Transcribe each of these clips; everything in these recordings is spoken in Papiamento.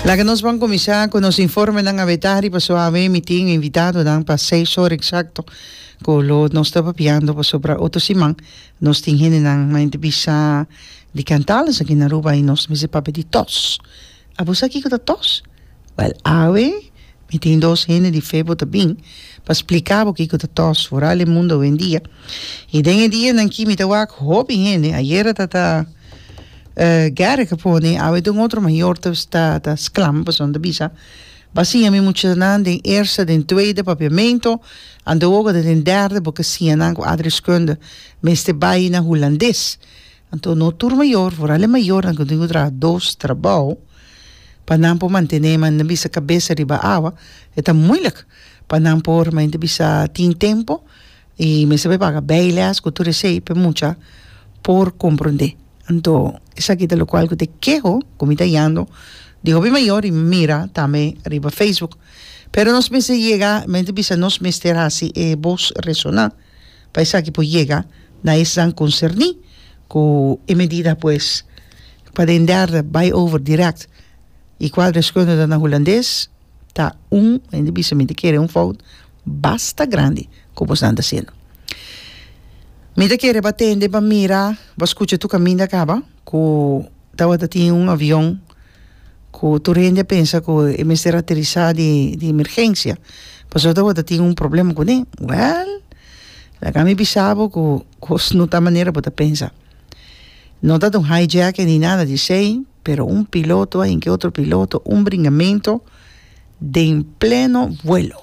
Laga nos bon kuminsá ku nos informenan abetá riba suawe. Mi tin invitadonan pa seis ora eksakto ku lo nos ta papiando pasobra otro siman nos tin hendenan na inter bisa di kantales aki na Aruba i nos mester papia di tòs. Abos sa kiko ta tòs? Bel awe mi tin dos hende di fe bo ta bin pa splika bo kiko ta tos foral e mundo awendia i den e dianan aki mi ta wak hopi hende ayera ta ta Gerrit a pone i awe ta un otro mayor ta ta ta sklama pasobra ta bisa ba siña mi muchanan den eerste den tweede papiamento anto bo ta den derde bo ka siña nan ku Adri Schöne mester bai na hulandes Anto no tur mayor, foral e mayornan cu tin cu traha dos trabou pa nan por mantene man nan bisa cabesa riba awa e ta moeilijk pa nan por men ta bisa tin tempo y mester bay paga bijles cu tur esey p'e mucha por comprende anto esaki ta locual cu te keho cu mi ta yando di hopi mayor y mira tambe riba facebook pero nos mester yega men ta bisa nos mester haci e voz resona. pa esaki por yega na esnan concerni cu e medida pues pa den derde bay over direct y cual deskundige na Hulandes ta un hende bisa mi ta kere un fout basta grandi cu bosnan ta hciendo. Mi ta kere bo atende bo mira bo scucha tur caminda caba. ku tabata tin un avion ku tur hende a pensa ku e mester aterisá di di emergensia pasobra tabata tin un problema kuné wèl laga mi bisa bo ku kos no ta manera bo ta pensa no tabata un hijack ni nada di esei pero un piloto ahí ke otro piloto un bringamento den pleno vuelo.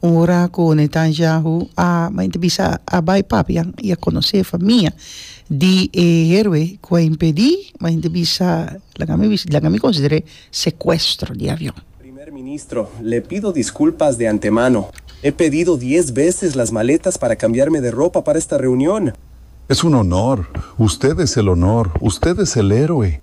Un ora ku Netanyahu a bai ta bisa a bai papian i a konosé famia di e héroe ku a impedí, bai ta bisa laga ami bisa laga ami konsider'é sekuestro di avion. Primer ministro, le pido diskulpas de antemano. He pedido dies beses las maletas para kambiarme de ropa para esta reunion. Es un honor. Usted es el honor. Usted es el héroe.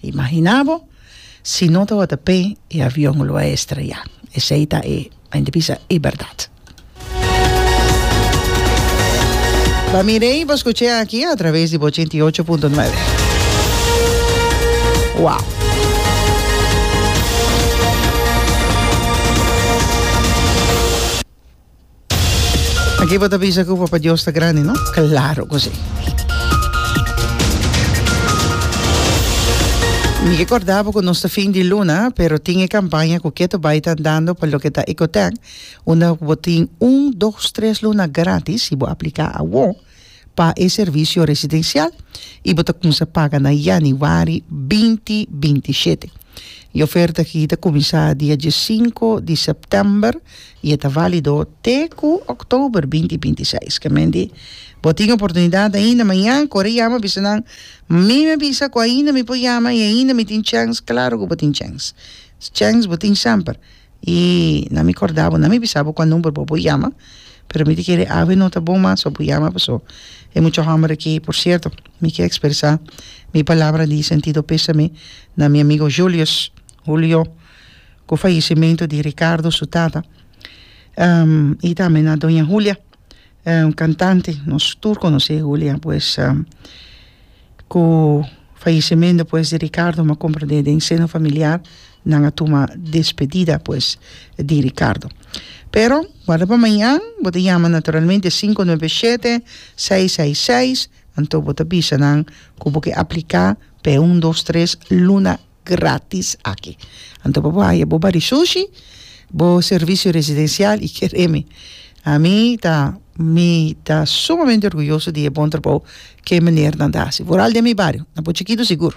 Imaginá bo si no tabata p'e e avion lo a estreyá. Esei ta e mente bisa e bèrdat. Bo mir'é i bo skuch'é aki a traves di bo ochenta i ocho punto nuebe. Wow! Aki bo ta bisa cu Papa Dios ta grandi, no? Claro cu si. Mi ke corda bo cu nos ta fin di luna, pero tin e campaña cu Keto Baai ta andando pa loke ta Ecotec, unda cu bo tin un, dos, tres luna gratis si bo aplica awor. pa e servisio residensial i bo ta kuminsá paga na yanüari binti binti i shete. E oferta akí ta kuminsá dia diesinko di sèptèmber i e ta válido te ku òktober binti i binti i seis. Kemende bo tin oportunidat ainda mañan, kore yama bisa nan, Mi mi a bisa ku ainda mi por yama i ainda mi tin chèns. Klaru ku bo tin chèns. Chèns bo tin semper. i na mi korda bo na mi bisa bo kua number bo bo yama pero mi ta kere awe no ta bon mas so bo yama paso e mucha homber aki por cierto mi ke expresa mi palabra di sentido pesame na mi amigo Julius Julio ku fallecimento di Ricardo su tata i tambe na doña Julia. Un cantante nos tur conoce Julia pues cu fallecimento pues di Ricardo m'ha comprende den seno familiar nan a tuma despedida pues di Ricardo pero guarda pa mañan bo ta yama naturalmente sinku noebe shete sei sei seis anto bo ta bisa nan cu bo ke aplica p'e un dos tres luna gratis aki. Anto pa bo haya bo bari shushi, bo servicio residencial y ker e mi. A mi ta mi ta sumamente orguyoso di e bon trabou ke e menernan ta hasi. Vooral den mi bario, na Pochikidu sigur.